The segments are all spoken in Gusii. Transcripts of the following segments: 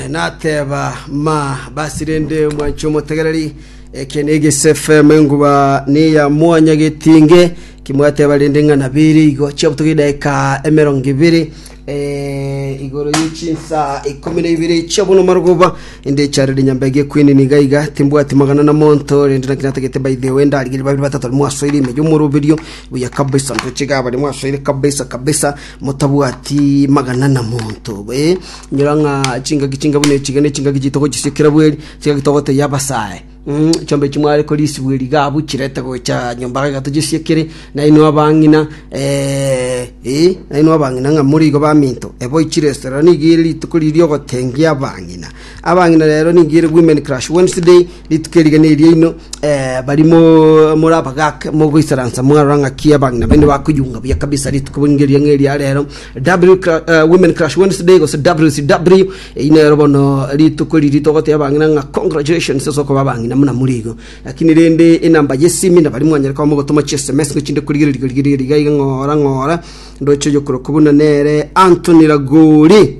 Nateba, Ma, basi rende mwanche omotegereri, eke negese FM, enguba neya mwanya getinge, kimwateba rende ng'a nabere igo chiabutoka edaika emerongo ebere eh, igoro ye chinsa ikomi na ibere chia bono marogoba inde charire nyambege ekwinini iga iga timbwati magana na monto rende naki natagete by the way ndarigeri babiri batato mwasoire ime yomoroberio buya kabisa ntoche iga abare mwasoire kabisa kabisa motabwati magana na monto ee nyora ng'a chingaki chinga buna echiga ne chingaki chitogochisia kera bweri chingaki togoteyia abasae Mm, chombe echio mware korisibwa eriga abu chirete gocha nyomba gaiga tochisia kere nainwe abang'ina eh, eh, nainwe abang'ina ng'a more igo baminto ebo ichire esera nigo ere rituko riria riogotengia abang'ina abang'ina rero nigo ere women crush wednesday Rituko eri gene eriaino, baria more abagaaka mogoisaransa mwarora ng'aki abang'ina baino bakoyunga buya kabisa rituko ng'eria ng'eria rero W cla- uh, Women Crush Wednesday gose WCW eyi nero bono rituko eri ritogoteba abang'ina ng'a congratulations ase okoba abang'ina muna more igo lakini rende enamba yesimi na baria mwanyare koba mogotoma chi sms ng'o chinde korigereria korigereria iga iga ng'ora ng'ora ndoche oyokorokwa buna nere Anthony Ragori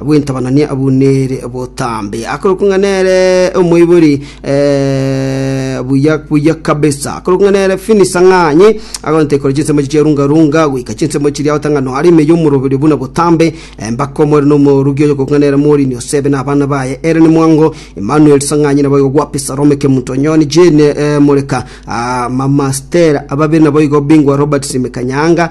Bw'entabanani abwo nere botambe akorokwa ng'a nere omoibori buya buya kabisa, akorokwa ng'a nere Finis Ang'anyi, agontete kore chinsemo echi chia runga runga goika chinsemo chiria agotanga ng'a no are ime y'omoroberio buna botambe. Mbaka omwere na omoorugi oyo okorokwa ng'a nere Morini Osebe na abana baye Ellen Mwango, Emmanuel Sang'anyi naboigo Gwapi Salome Kemuntonyoni, Jane Moreka, Mama Stella, ababere naboigo Bingwa Robert Simeka Nyaanga,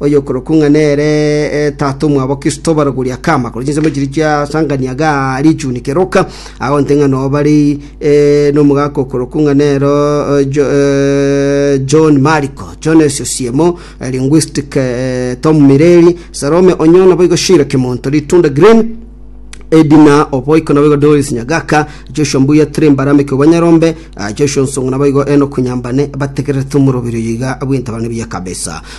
Oyokorokwa ng'a nere tata omwabo Kristo barogorie akama korwa chinsemo chiria chiasangania gaa richuni keroka, agonte ng'a noo bare nomogaka okorokwa ng'a nero John Mariko, Jones Osiemo, linguistic, Tom Mireri, Salome Onyo naboigo Shira Kimonto, Litunda Green, Edina Oboiko naboigo Doris Nyagaka, Joshua Mbuya Tiri Mbarameke obwa Nyarombe, Joshua Nsongo naboigo Enock Nyambane bategererete omoroberi oyo iga bw'entabarana buya kabisa.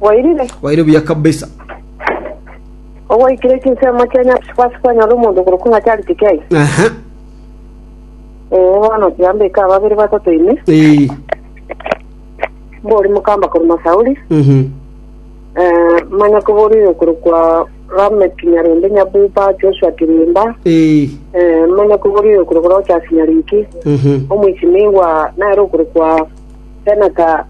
Wairire? Waire buya kabisa. Ogwaikire chinsemo chia Nyasae gwase kwanyora omonto okorokwa ng'a Charles Kikei? Aha. Ee, bono tiambeka babere batato ime. Ee. Mbori mokamba korwa Masauri. Mhm. Eh, manya koborire okorokwa Lamek Nyarende Nyabuba, Joshua Kirimba. Ee. Eh, manya koborire okorokwa Rochas Nyariki. Mhm. Omoisimigwa nere okorokwa Senata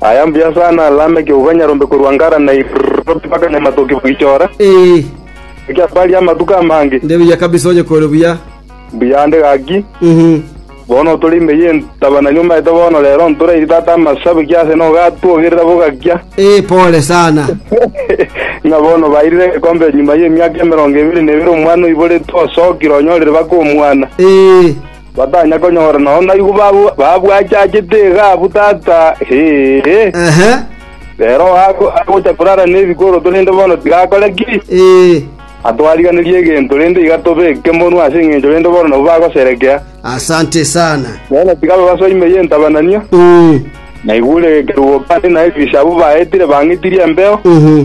Aya mbuya sana Lameki obo banyarombe korwa Ngara na Iroti mpaka Nyamatoki bagichora, Ee, ekiagera baria amatuko amange. nde buya kabisa onye kore buya. Mbuya ande gaki, Mhm. bono tore ime y'entaba na nyomaete bono rero ntorairi tata amasabe ki ase nogatwogerera bogakia. Ee, pole sana. Ng'a bono bairire egekombe nyuma y'emiaka emerongo ebere na ebere omwana oiboretwe osokire onyorire baka omwana. Ee, Batanya konyora nonya naigwa ba- babwachachete egaabu tata, hehe. Ehe, Rero ago- agocha korara nebikoroto rende bono tigakore ki? ee. Atwariganirie egento rende iga tobe ekemonwa ase engencho rende bono nabwo bagoserekea. Asante sana. Bono tiga babaso ime y'entabananio, Mm, naigure ekerubo kande naye risabu baetire bang'itirie embeo. mhm.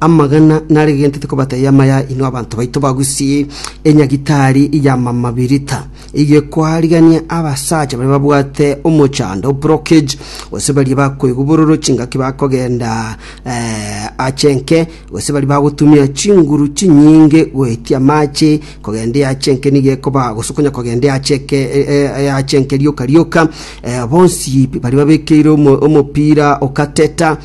Amagena naregentete kobatebia amaya inwe abanto baito bagusie enyagitari y'amamabirita, eyio ekoarigania abasacha baria babwate omochando, brockage, gose baria bakoigwa bororo chingaki bakogenda eh, ache enke, gose baria bagotumia chinguru chinyinge goetia amache kogenda eache enke nigo ekoba gose okonya kogenda eache eke e- e- eache enke rioka rioka eh, bonsi baria babekeire omo- omopira okateta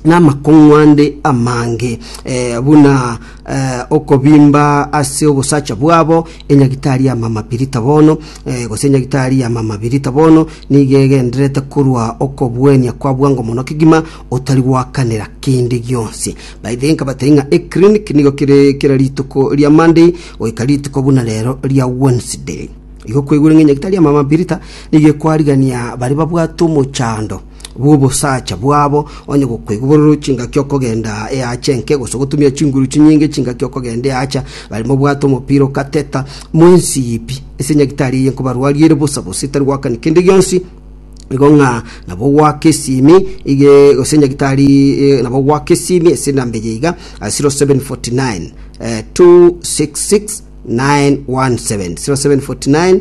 namakong'u ande amange, eh, buna eh, okobimba ase obosacha bwabo enyagitari ya mama birita bono eh, gose enyagitari ya mama birita bono nigo egendererete korwa okobuenia kwa bwango mono kegima otari gwakanera kende gionsi by the nkabatari ng'a eclinic nigo kere kera rituko ria monday goika rituko buna rero ria wednesday igo kwaigure ng'a enyagitari ya mama birita nigo ekwarigania bare babwate omochando bw'obosacha bwabo, onye gokoigwa bororo chingaki okogenda eacha enke, gose gotumia chinguru chinyinge chingaki okogenda eacha, barimo obwate omopira ogateta, mwensibi ase nyagitari eye nkobarwarie ere bosa bosa etari goakani kende gionsi, nigo ng'a nabo goaka esimi ige gose nyagitari eh, nabo goaka esimi ase enamba eye iga ah, 0749 eh, 266 917 0749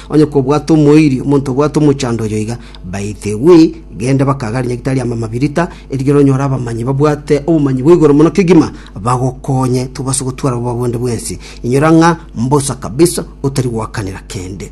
Onye kobwate omoiri, omonto obwate omochando oyo iga, by the way, genda bakagare nyagitari amo amabirita, erigiya oronyore abamanyi babwate obomanyi bwa igoro mono kegima, bagokonye tobase gotwara obobe bwonde bwensi. Inyora ng'a mbosa kabisa otari goakanera kende.